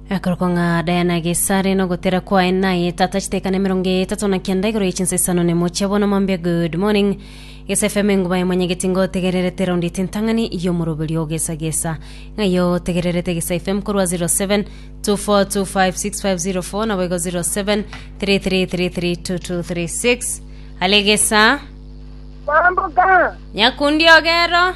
Akorokwa ng'a Diana Gesare na ogotera kwaye naye tata chitekane emerongo etato na kenda igoro ye chinsa isano na emochie bono mambia good morning Gesa FM enguba ya mwenyegeti ngotegererete raundi etintang'ani y'omoroberio ogesa gesa ng'ai otegererete Gesa FM korwa 07 24256504 nabo igo 07 33332236 ale Gesa Mambo ga nyakundi ogero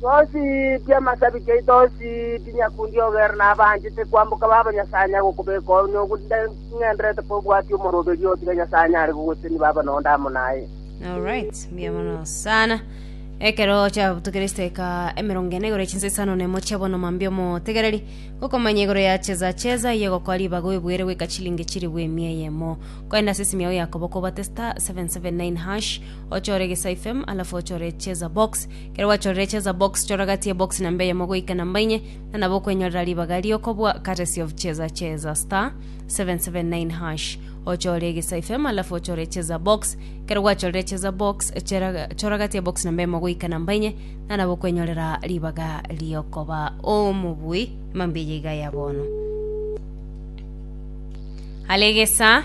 Tosiibi amasabiti aito, osiibi nyakundi ogere nabanchete kwamboka baba Nyasae anyare gokobeka onye ogotengenderete kobwatia omoroberio oo tiga Nyasae anyare gogosenia baba nonde amo naye. Alright, mbuya mono sana. Ekero chiabutukire esideka emerongo ene igoro chinsa isano na emo chia bono mambia omotegereri gokomanya igoro ya cheza cheza iye gokoa ribaga oibuere goika chilingi chiribu emia eyemo. Koenda ase esimi yao Yakobo kobate star 779 hash ochore egesaifem alafu ochore echeza box kero gwachorire echeza box chora gati ya box namba eyemo goika namba inye na nabo okwenyorera ribaga riokobua courtesy of cheza cheza star 779 hash ochore egesaifem alafu ochore echeza box kero gwachorire echeza box chera- chora gati ya box namba eyemo goika namba inye na nabo okwenyorera ribaga riokoba omobui mambia iga ya bono alegesa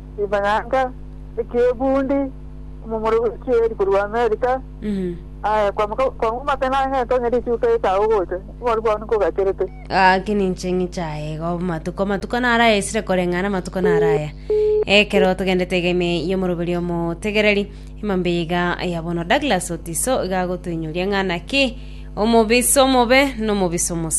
rimanyaga eki'ebundi, omomura bw'echieri korwa Amerika, aye kwamoka- kwamomaka nang'ente onye richuka etago gocha, oboru bwao nkogacherete. Gaki ninche ng'ichaye iga amatuko amatuko naro aya esire koreng'ana amatuko naro aya ekero togendete egeme y'omoroberi omotegereri emambe eye iga ya bono douglas otiso iga agotoinyoria ng'a naki omobisa omobe na omobisa omosa